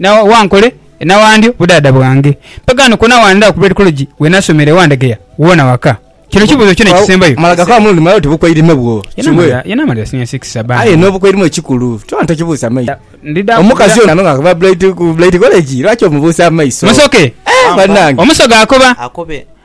Na wankole enawandyo budaadha bwange. Mpagaano kwona wandhaba ku Bred College we nasomera ewa Ndegeya wona waka. Kino kibuuzo kyona ekisembayo. Mala gakaba mulundi mulala oti bukwairime bwo kiwe. Yanamalira senior six bambi. Aye n'obukwairime ekikulu kyona tokibuusa maiso. Omukazi ono nga ava ku Bred College lwaki omubuusa amaiso? Musoke! Banange. Omusoga akoba.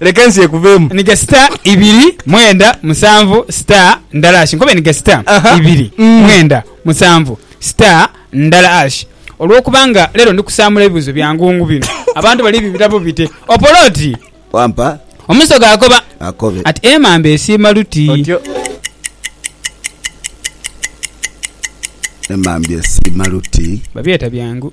Leka ensi ekuveemu. Nige star ibiri mwenda musanvu star ndala ash nkobe nige star ibiri mwenda musanvu star ndala ash olwokuba nga lero ndi kusaamula ebibuzo bya ngungu bino abantu bali bibitabo bite Opolo oti Wampa. Omusoga akoba Akobe. ati emamba esiima luti. Otyo. Emamba esiima luti. Babyeta byangu.